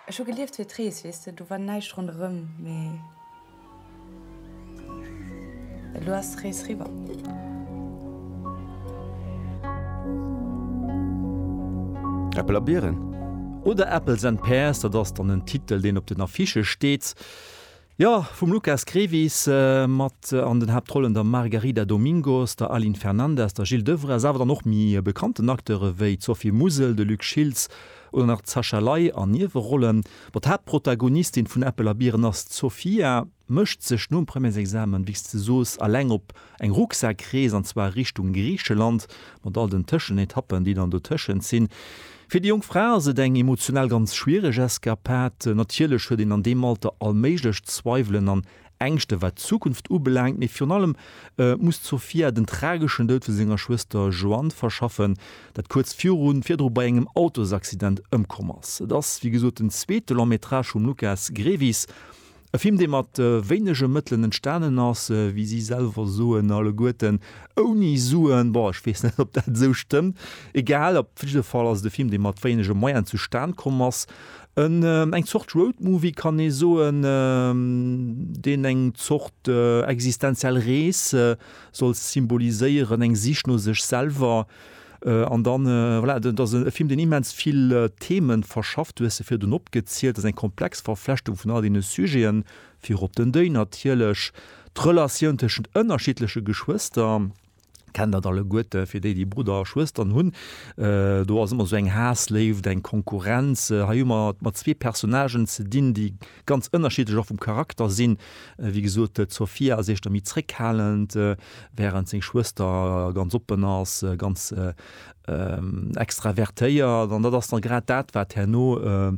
Ech hu gelieft fir d'Rees, weess de, do war näischt ronderëm, mee elo ass d'Rees riwwer. Äppel a Bieren oder Apples and Pears, dat ass dann en Titel, deen op den Affichë steet. Jo, vum Lukas Grevis, mat an den Haaptrollen der Margarida Domingos, der Aline Fernandez, der Jil Devrez, awer dann och méi bekannten Acteure wéi d'Sophie Musel, de Luc Schiltz oder nach d'Sacha Ley an Niewerollen. Bon, d'Haaptprotagonistin vun Äppel a Biren ass d'Sofia, mécht sech nom Premièresexamen, wéi s de soos, alleng op Eng Rucksak-Rees, an zwar Richtung Griicheland, mat all den Tëschenetappen, déi dann dotëschent sinn. Fir déi jonk Fra ass et eng emotional ganz schwiereg Eskapad. Natierlech huet een an deem Alter all méiglech Zweiwelen an Ängschte wat d'Zukunft ubelaangt, mee virun allem muss d'Sofia den trageschen Doud vu senger Schwëster Joanne verschaffen, dat kuerz viru virdru bei engem Autosaccident ëmkomm ass. Et ass wéi gesot den zweete Long-Métrage vum Lukas Grevis. E Film, dee mat wéinege Mëttelen entstanen ass, wéi si selwer soen, alleguerten ouni Suen. Bon, ech weess net, ob dat esou stëmmt, egal. Op jidde Fall ass et e Film, dee mat wéinege Moyene zustan komm ass. Eng Zort Roadmovie, kann ee soen, deen eng Zort existenziell Rees soll symboliséieren, eng Sich no sech selwer. An dann, voilà, dat ass e Film, deen immens vill Themen verschafft. Du hues se virdrun opgezielt. Dat ass eng komplex Verflechtung vun all deene Sujeten, virop den Deuil natierlech, d'Relatioun tëschent ënnerschiddleche Geschwëster, kennt dat alleguerte fir déi, déi Brudder a Schwëstern hunn. Do ass ëmmer esou eng Haass-Léift, eng Konkurrenz. Hei hu mer et mat zwee Personnagen ze dinn, déi ganz ënnerschiddlech och vum Charakter sinn. Wéi gesot, d'Sofia ass éischter méi zréckhalend, wärend seng Schwëster ganz oppen ass, ganz extravertéiert. An dat ass da grad dat, wat herno